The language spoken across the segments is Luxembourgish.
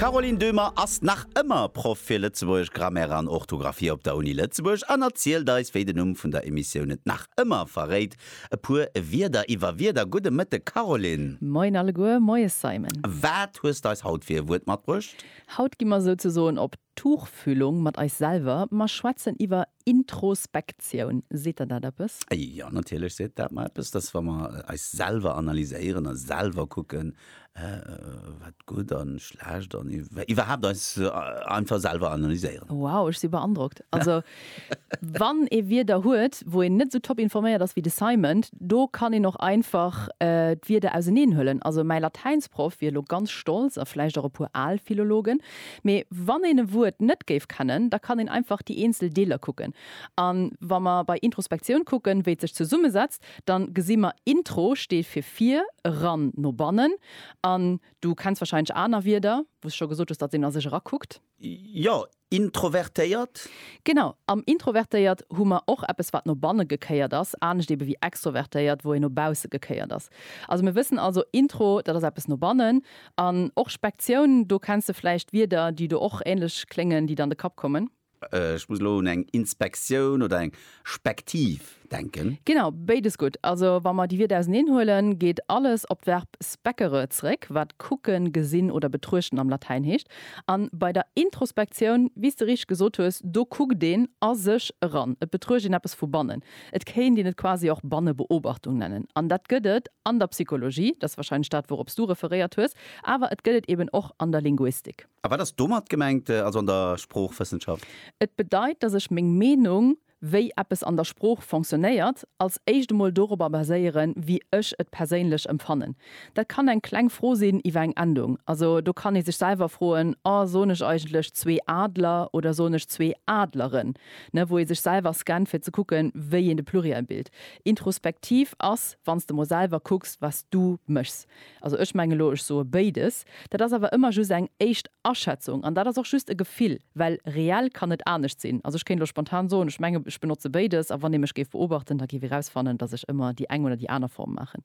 D'Caroline Döhmer ass nach ëmmer Proff fir Lëtzebuergesch Grammaire an Orthografie op der Uni Lëtzebuerg an erzielt eis, wéi den Numm vun der Emissioun et nach ëmmer verréit, e puer Wierder iwwer Wierder. Gudde Mëtteg Caroline! Moien alleguer, moies Simon! Wat hues de eis haut fir e Wuert matbruecht? Haut gi mer souzesoen op Tuchfühlung mat eis selwer. Mer schwätzen iwwer Introspektioun, seet der dat eppes? Jo, natierlech seet dat mer eppes, dass wa mer eis selwer analyséieren a selwer kucken, wat gutt a schlecht an iwwerhaapt eis einfach selwer analyséieren. Wow, ech si beandrockt. Also wann ee Wierder huet, wou een net esou top informéiert ass wéi de Simon, do kann een och einfach d'Wierder auseneen huelen. Also mäi Latäinsproff wier elo ganz stolz, a vläicht och e puer al Philologen, Mee wann een e Wuert net géif kennen, da kann een einfach déi eenzel Deeler kucken. A wa mer bei Introspektioun kucken, wéi et sech zesummesetzt, da gesi mer, Intro steet fir vir, eran, no bannen. An du kenns warscheinlech aner Wierder, wou s scho gesot hues, datt een a sech erakuckt. Jo, introvertéiert. Genau, am introvertéiert hu mer och eppes, wat no banne gekéiert ass, anescht ebe wéi extrovertéiert, wou een no bausse gekéiert ass. Also mir wëssen also, Intro, dat ass eppes no bannen. An och Spektioun, do kenns de vläicht Wierder, déi do och änlech kléngen, déi dann de Kapp kommen. Ech muss elo un eng Inspektioun oder eng Spektiv denken. Genau, béides gutt. Also wa mer déi Wierder auseneen huelen, geet alles op d'Verb speccere zeréck, wat kucken, gesinn oder betruechten am Latäin heescht. A bei der Introspektioun, wéi s de richteg gesot hues, do kuckt een a sech eran, et betruecht een eppes vu bannen. Et kéint een et quasi och Bannebeobachtung nennen. An dat gëtt et an der Psychologie, dat ass warscheinlech dat, wourops du referéiert hues, awer et gëtt et eeben och an der Linguistik. A wat ass domat gemengt, also an der Sproochwëssenschaft? Et bedeit, datt ech meng Meenung, wéi eppes an der Sprooch fonctionnéiert, als éischt emol dorobber baséieren, wéi ech et perséinlech empfannen. Dat kann eng kleng Fro sinn iwwer eng Endung. Also do kann ee sech selwer froen, Oh, soen ech eigentlech zwee Adler oder soen ech zwee Adleren? ne, wou ee sech selwer scannt fir ze kucken, wéi een de Pluriel bilt. Introspektiv ass, wann s de mol selwer kucks, wat s du méchs. Also ech menge lo, ech soe béides. Dat ass awer ëmmer just eng éischt Aschätzung an dat ass och just e Gefill, well reell kann net anescht sinn. Also ech kéint lo spontan soen, ech menge ech benotze béides a wann ee mech géif beobachten, da géif ee rausfannen, datt ech ëmmer déi eng oder déi aner Form maachen.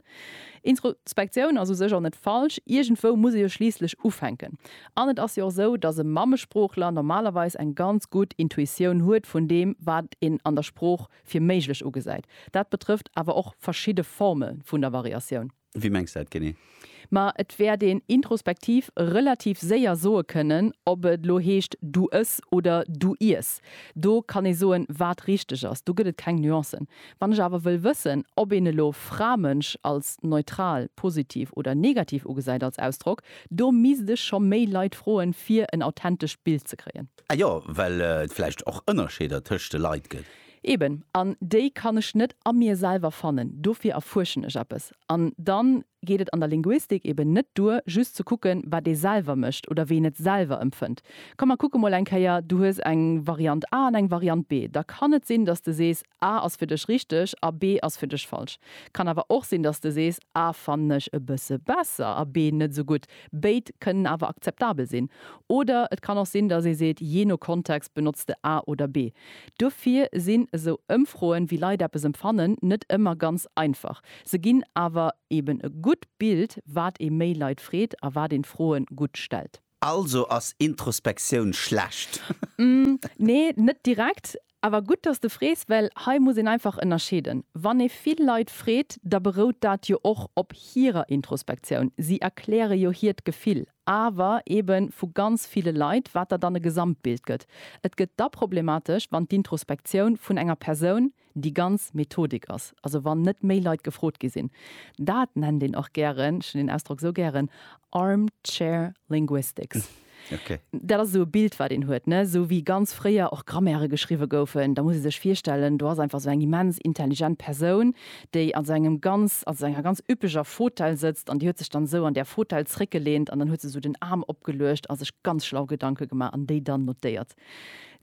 Introspektioun ass u sech och net falsch, iergendwou muss ee jo schliisslech ufänken. An et ass jo och esou, dass e Mammesproochler normalerweis eng ganz gutt Intuitioun huet vun deem, wat een an der Sprooch fir méiglech ugesäit. Dat betrëfft awer och verschidde Forme vun der Variatioun. Wéi mengs de dat genee? Ma et wäert een introspektiv relativ séier soe kënnen, ob et elo heescht du ëss oder du iess. Do kann ee soen, wat richteg ass. Do gëtt et keng Nuancen. Wann ech awer wëll wëssen, ob een elo Fra-Mënsch als neutral, positiv oder negativ ugesäit als Ausdrock, Do misst ech scho méi Leit froen fier en authentescht Bild ze kréien. Ah jo, well et vläicht och Ënnerscheeder tëscht de Leit gëtt. Eben, an déi kann ech net a mir selwer fannen, dofir erfuerschen ech eppes. An dann geet et an der Linguistik eben net duer just ze kucken wat ee selwer mécht oder wéi een et selwer empfënnt. Komm mer kucke mol eng Kéier, du hues eng Variant A an eng Variant B, da kann et sinn dass de sees, A ass fir dech richteg a B ass fir dech falsch. Kann awer och sinn, dass de sees, A fannen ech e bësse besser a B net esou gutt. Béid kënnen awer akzeptabel sinn. Oder et kann och sinn, dass ee seet, jee no Kontext benotzt de A oder B. Dofir sinn esou Ëmfroen, wéi Leit eppes empfannen, net ëmmer ganz einfach. Se ginn awer eben e gutt Bild, wat ee méi Leit freet a wat een d'Froen gutt stellt. Also ass Introspektioun schlecht? Nee, net direkt. Awer gutt, dass de frees, well hei muss een einfach ënnerscheeden. Wann ee vill Leit freet, da berout dat jo och op hirer Introspektioun. Si erkläre jo hiert Gefill. Awer eebe vu ganz ville Leit, wat der dann e Gesamtbild gëtt. Et gëtt da problematesch, wann d'Introspektioun vun enger Persoun, Déi ganz Methodik ass, also wann net méi Leit gefrot gi sinn, dat nennt een och gären, ech hunn deen Ausdrock esou gären, Armchair Linguistics. Dat ass esou e Bild, wat een huet, esou wéi ganz fréier och Grammaire geschriwwe goufen. Da muss ee sech virstellen, do ass einfach esou eng immens intelligent Persoun, déi an esou engem ganz, also enger ganz üppeger Fotell sëtzt an déi huet sech dann esou an där Fotell zréckgelehnt an dann huet se esou den Aarm opgeluecht a sech ganz schlau Gedanke gemaach an déi dann notéiert.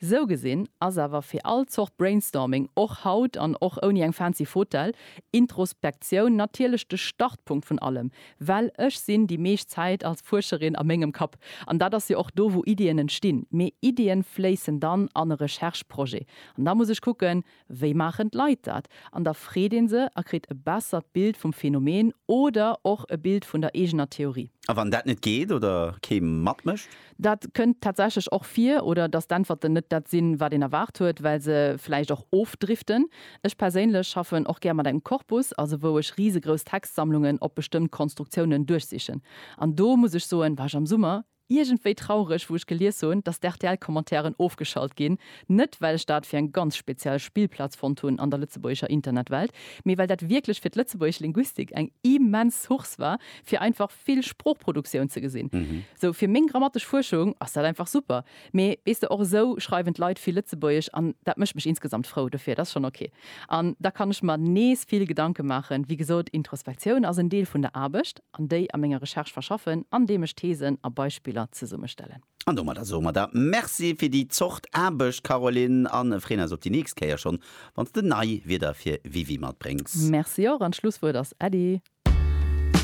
Sou gesinn ass awer fir all Zort Brainstorming, och haut an och ouni eng fancy Fotel, Introspektioun natierlech de Startpunkt vun allem, well ech sinn déi meescht Zäit als Fuerscherin a mengem Kapp an dat ass jo och do wou Iddien entstinn, mee Iddien fléissen dann an e Recherche-Projet an da muss ech kucken, Wéi maachen d'Leit dat? An da freet ee se a kritt e bessert Bild vum Phänomen oder och e Bild vun der eegener Theorie. A wann dat net geet oder kee matmécht? Dat kënnt tatsächlech och vir. Oder dass d'Äntwerten net dat sinn, wat een erwaart huet, well se vläicht och ofdriften. Ech perséinlech schaffen och gär mat engem Korpus, also wou ech risegrouss Textsammlungen op bestëmmt Konstruktiounen duerchsichen. An do muss ech soen, war ech am Summer Iergendwéi traureg wou ech gelies hunn dass d'RTL Commentairen ofgeschalt ginn, net well ech dat fir eng ganz speziell Spillplaz fonnt hunn an der lëtzebuergescher Internetwelt, mee well dat wierklech fir d'lëtzebuergesch Linguistik eng immens Source war fir einfach vill Sproochproduktioun ze gesinn. Sou fir meng grammatesch Fuerschung ass dat einfach super, mee weess de och esou schreiwen d'Leit vill lëtzebuergesch an dat mécht mech insgesamt frou, dofir et ass schonn ok an da kann ech mer nees vill Gedanke maachen. Wéi gesot, Introspektioun ass en Deel vun der Aarbecht. an déi a menger Recherche verschaffen, andeem ech Thesen a Beispiller zesummestellen. An domadder soe mer der Merci fir déi Zort Aarbecht, Caroline, a freeën eis op déi nächst Kéier schonn, wann s de nei Wierder fir WiWi matbréngs. Merci och, an d'Schlusswuert ass Äddi.